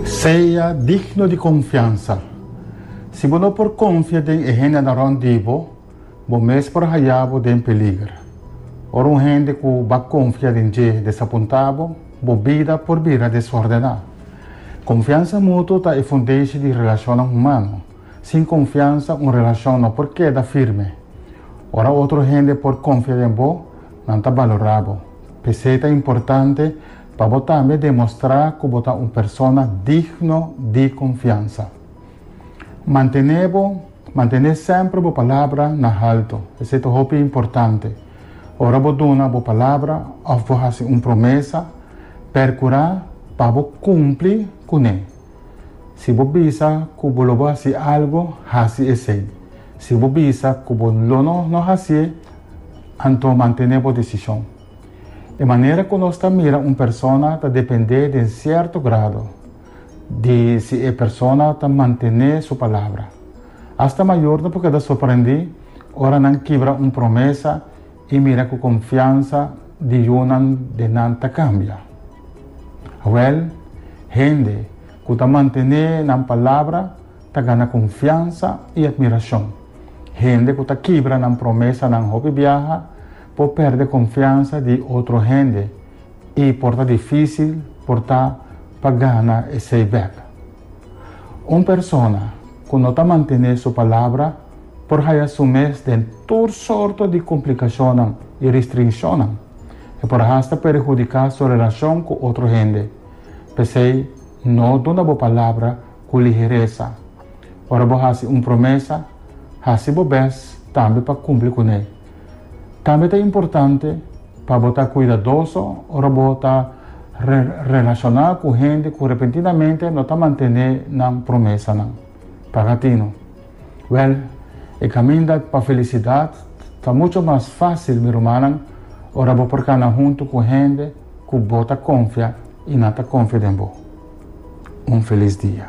Sea digno di konfiansa. Si bo no por konfia den e hendenan rònt di bo, bo mes por haya bo den peliger. Ora un hende ku bo a konfia den dje desapuntá bo, bo bida por bira desórdená. Konfiansa mutuo ta e fundeshi di relashonnan humano. Sin konfiansa un relashon no por keda firme. Ora otro hende por konfia den bo, nan ta balorá bo. P'esei ta importante pa bo tambe demostrá ku bo ta un persona digno di konfiansa. Mantené bo mantené semper bo palabra na haltu, esei ta hopi importante. Ora bo duna bo palabra òf bo hasi un promesa, perkurá pa bo kumpli kuné. Si bo bisa ku bo lo bo hasi algu, hasi esei. Si bo bisa ku bo lo no hasié, anto mantené bo desishon. E manera ku nos ta mira un persona ta dependé den sierto grado di si e persona ta mantené su palabra. Asta mayornan por keda sorprendí ora nan kibra un promesa i mira ku konfiansa di yunan den nan ta kambia. Awèl, hende ku ta mantené nan palabra ta gana konfiansa i atmirashon. Hende ku ta kibra nan promesanan hopi biaha Por pèrdè konfiansa di otro hende i por ta difísil por ta pa gana esei bèk. Un persona ku no ta mantené su palabra por haya su mes den tur sorto di komplikashonnan i ristrinshonnan. E por hasta perhudiká su relashon ku otro hende. P'esei, no duna bo palabra ku liheresa. Ora bo hasi un promesa, hasi bo bes tambe pa kumpli kuné. Tambe ta importante pa bo ta kuidadoso ora bo ta relashoná ku hende ku repentinamente no ta mantené nan promesanan. Paga tino? Wèl, e kaminda pa felisidat ta muchu mas fásil, mi rumannan, ora bo por kana huntu ku hende ku bo ta konfia i nan ta konfia den bo. Un felis dia.